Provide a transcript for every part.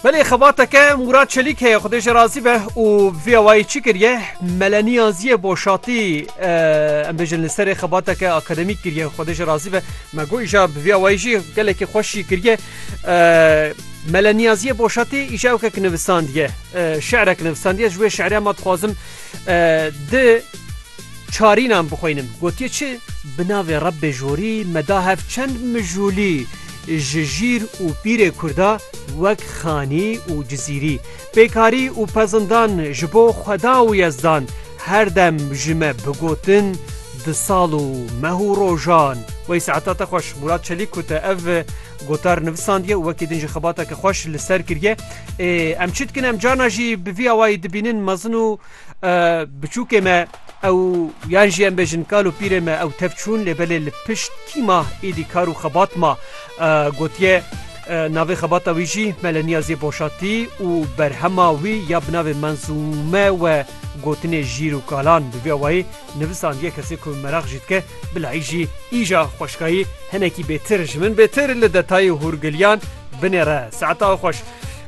Belê xebateke Mûrat Çelîk heye xudê jê razî be û viyawayî çi kiriye meleniya ziyê boşatî em bêjin li serê xebateke akademîk kiriye xudê jê razî be me got îja bi viyawayî jî gelekî xweş jî kiriye meleniya ziyê boşatî îja ewkek nivisandiye şerek nivisandiye ji wê şerê me dixwazim di Çarînan bixwînim, gotiye çi? Bi navê Rebbê Jorî me da hev çend mijûlî ji jîr û pîrê Kurda wek Xanî û Cizîrî, Pêkarî û Pezindan ji bo Xweda û Yezdan her dem ji me bigotin di sal û meh û rojan. Wey saeta te xweş Mûrat Çelîk ku te ev gotar nivisandiye û wekî din jî xebateke xweş li ser kiriye. Ê em çi dikin em carna jî bi vî awayî dibînin mezin û Biçûkê me ew yan jî em bêjin kal û pîrê me ew tev çûn lê belê li pişt kî ma êdî kar û xebat ma gotiye navê xebata wî jî me li niyazê boşatî û berhema wî ya bi navê Menzûme we gotinê jîr û kalan bi vî awayî Nivisan yê kesê ku meraq jî dike, bilay jî îja xweşkayî hinekî bêtir ji min bêtir li detayê hûrgiliyan binêre. Saeta xwe xweş.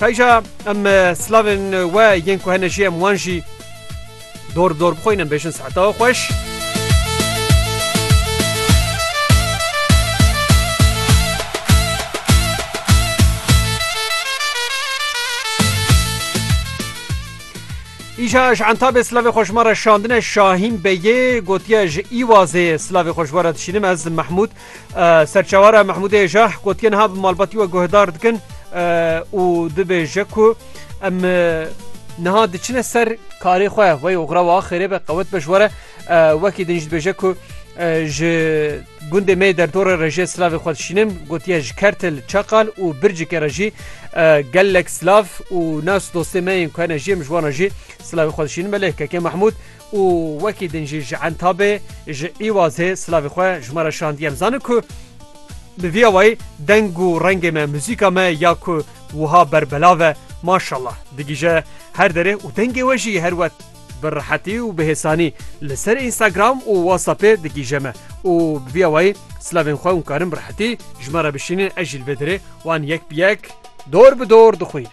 Kayja em slavên we yên ku hene jî em wan jî dor bi dor bixwîn em bêjin saeta xwe xweş. Îşa ji entabê silavê xwe ji me re şandine Şahîn Begê gotiye ji Îwazê silavê xwe ji we re dişînim ez Mehmûd serçewara Mehmûdê Jah gotiye niha bi malbatî we guhdar dikin û dibêje ku em niha diçine ser karê xwe wey oxra wa xêrê be qewet be ji we re Wekî din jî dibêje ku ji gundê me derdora rejê silavê xwe dişînin gotiye ji kertil çaqal û bircikê re jî gelek silav û nas dostê me yên ku hene jiyê min ji wana jî silavê xwe dişînin belê kekê Mahmûd û wekî din jî ji entabê ji îwazê silavê xwe ji me re şandiye em zanin ku bi vî awayî deng û rengê me muzîka me ya ku wiha berbelave maşallah digîje her derê û dengê we jî her wet Bi rehetî û bi hêsanî li ser Instagram û WhatsAppê digihîje me û bi vîya wayî silavên xwe hûn karin bi rehetî ji me re bişînin ez jî li vê derê wan yek bi yek dor bi dor dixwînim.